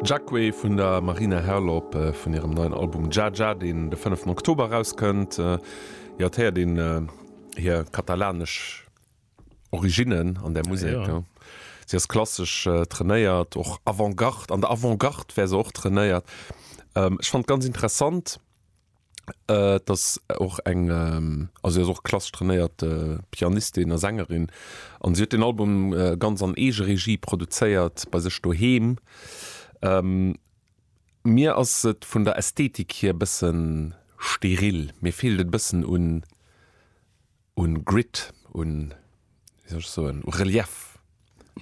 Jacque vun der Marina Herlop vun hirem neien Album Dja Dja, deen de fënneften Oktober erauskënnt. Jo, et héiert een hir katalanesch Originnen an där Musek. Si ass klassesch trainéiert, och Avant-Garde, an der Avant-Garde wär se och trainéiert. Ech fand ganz interessant, Äh, et ass och eng, also si ass och klassesch trainéiert Pianistin a Sängerin an si huet deen Album ganz an Eegeregie produzéiert bei sech doheem. Mir ass et vun der Ästhetik hier e bëssen steril, mir feelt et e bëssen un, un Grit un so un Relief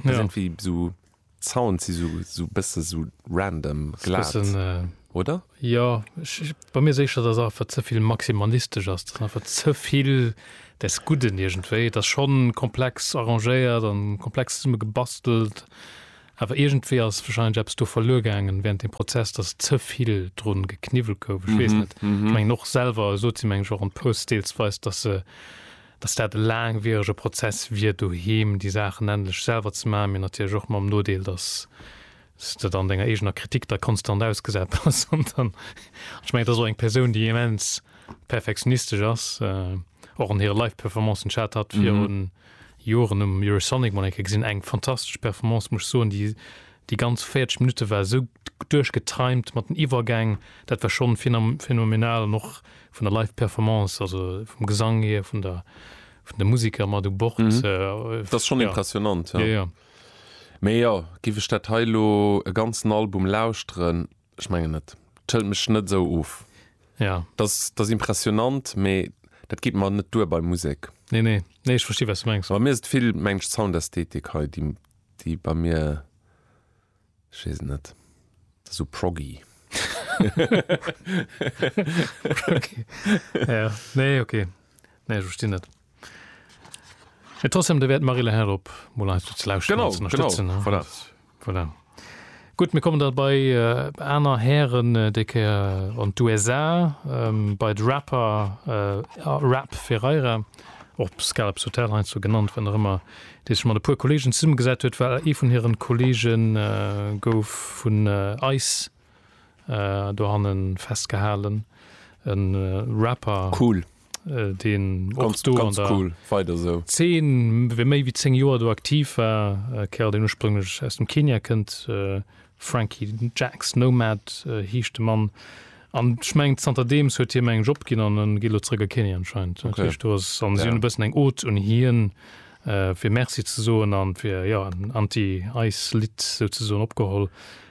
ja. irgendwie so Zaun si so, so bësse so random glat bisschen, äh, oder? Ja ich, bei mir secher dat einfach zevill maximalistisch ass einfach zevill des guden irgendwéi das schon komplex arrangéiert an komplex summe gebastelt Awer iergendwéi ass wahrscheinlech eppes do verluer gaangen während dem Prozess, dass ze vill drun gekniwwelt gouf. Ech weess net, ech mengen och selwer esot ze hunn, mengen ech och an Posts deelsweis, dass se, dass dat e laangwierege Prozess wier doheem déi Saachen endlech selwer ze maachen, mee natierlech och mam Nodeel, dass s de dann denger eegener Kritik da konstant ausgesat bass an dann, an ech mengen et ass och eng Persoun déi immens perfektionistesch ass, och an hire Live-Performancen, ech hat hatt virun. Joren um Eurosonic mol eng Kéier gesinn, eng fantastesch Performance muss ech soen. Déi déi ganz 40 Minutte war esou duerchgetimed mat den Iwwergäng, dat war schonn phenomenal an och vun der live Performance, also vum Gesang hier, vun der vun de Musiker mat u Bord. Dat ass schonn impressionant, jo. Mee jo, géif ech dat hei elo e ganzen Album lauschteren, Ech mengen net. D'schëlt mech net esou of. Ja. Dass, dass impressionant, mee dat geet mer net duer bei Musek. Nee, nee. Nee, ech versti wat s de mengs. Bei mir ass et vill, mengen ech, d'Soundästhetik hei, déi, déi bei mir, ech weess et net, dat ass esou proggy. Proggy. Ja, nee, okay. Nee, ech verstinn et. Mee trotzdem, da wäert d'Marie-Laure Herlop mol eis do ze lauschteren an Genau, ze genau, ënnerstëtzen. ne? voilà. Voilà. Gutt, mir kommen da bei äh, aner Hären, äh, déi Kéier an d'USA, ähm, bei de Rapper äh, a Rap Ferreira, och Scalps Hotel heiansdo genannt, wann och ëmmer, dee sech mat e puer Kolleegen zesummegesat huet, well ee vun hiren Kolleegen äh, gouf vun äh, ice äh, dohannen festgehalen, en äh, Rapper. Cool. äh, deen och Ganz, do an ganz der cool. Weider sou. Zeen wéi méi wéi 10 Joer do aktiv war, äh, Kerl deen ursprünglech aus dem Kenia kënnt, äh, Frankie Jax Nomad äh, heescht de Mann. An ech mengen zanterdeems huet hiem eng Job ginn an en geet elo zeréck a Kenia anscheinend. Dat Okay. heescht do ass an si Ja. hunn e bëssen eng Ode un hien, äh, fir Merci ze soen an fir ja en Anti-Ice Lidd souzesoen opgeholl.